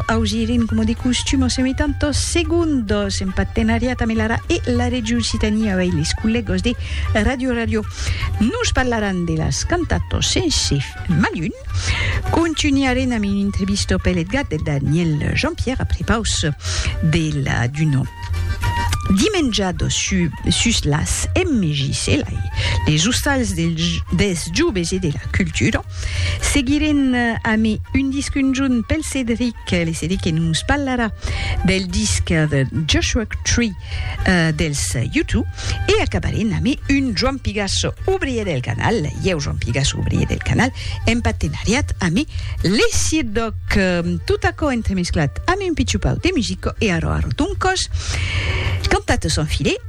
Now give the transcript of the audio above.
Augirim, coma de costum, o semitantos segundos en partenariat amb l'ARA e la Region Occitània avei les collègos de Radio Radio. Nos parlaràn de las cantatos sense malun. Contunharem amb un entrevisto pel Edgat de Daniel Jean-Pierre après paus de la Duno. Dimenjado su, sus las MJC, les ostals dels joves e de la cultura. Seguirem amé un disc unjun pel Cedric, le Cedric que nos parlarà del disc de Joshua Tree uh, dels U2 e acabarem amé un Joan Pigasso, ouvrier del canal, ieu Joan Pigasso, ouvrier del canal, en partenariat amé le Sidoc. Tot aquò entremesclat amé un pitjupau de musico e arò arò ton còs. Cantat son filet.